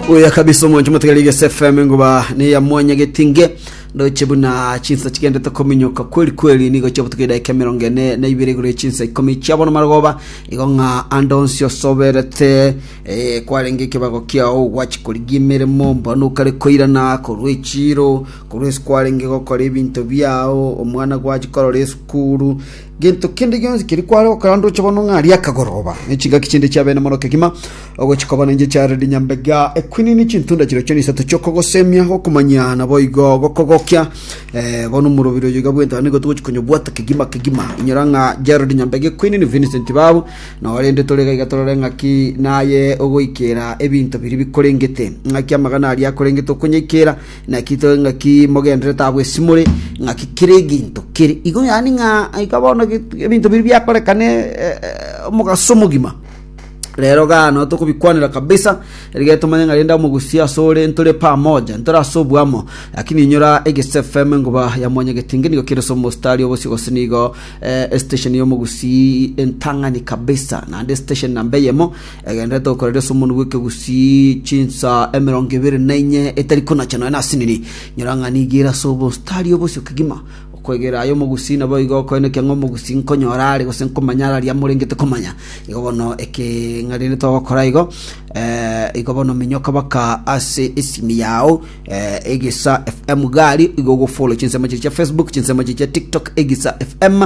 oya kabisa omonche omotegera igese fm ngoba neya mwanya getinge ndoche buna chinsa chigendete kominyoka kweli kweli nigo chiabutuka edaika emerongo ene na ibere igoro chinsa ikomi chiabono marogoba igo ng'a ande onsi osoberete eh, kwarenge ekebago kiao gwachikorigia emeremo mbona okare koirana korwa echiro korwa esi kwarenge gokora ebinto biao omwana gwachikorora esukuru Gento kende gionsi keria kware gokora ndoche bono ng'a aria akagoroba, ne chingaki chinde chia bene mono kegima, ogochia koba nenche chiarereti nyambega ekwinini chintunda chiria chiana isato chi'okogosemia, gokomanyia naboigo gokogokia. Eh, bono omorobiri oyo iga bwento, nigo togochia konyobwata kegima kegima. Inyora ng'a Gerald Nyambega ekwinini, Vincent Babu, noo rende tore iga iga torore ng'aki naye ogoikera ebinto biria bikorengete. Ng'aki amagana aria akorengete okonyaikera, Naki to ng'aki mogenderete abwo ase more, ng'aki kera eginto kere igo, yaani ng'a iga bono ge- ebinto biria biakorekane eh, eh, omogaso omogima. Rero gano tokobikwanera kabisa, erige tomanye ng'a rende omogusi ase ore ntore pamoja, ntore ase obwamo. Lakini inyora Egesu FM ngoba ya Mwanyagetenge nigo kere ase omostari obosio gose nigo eh, estation ya omogusi entang'ani kabisa, naende estation namba eyemo Egenderete gokoreria ase omonwe bw'ekegusii chinsa emerongo ebere na inye etari konacha nonya nasinini. Nyora ng'a nigiire ase obositari oo bosio kegima. Okwegera aya omogusii naboigo okoenekia ng'a omogusii nkonyora are gose nkomanya are aria morengete komanya. Igo bono eke ng'a rende togokora igo, igo bono minyoka baka ase esimi yao Egisa FM gari igo ogofollow chinsemo chiria chia Facebook, chinsemo chiria chia TikTok Egisa FM,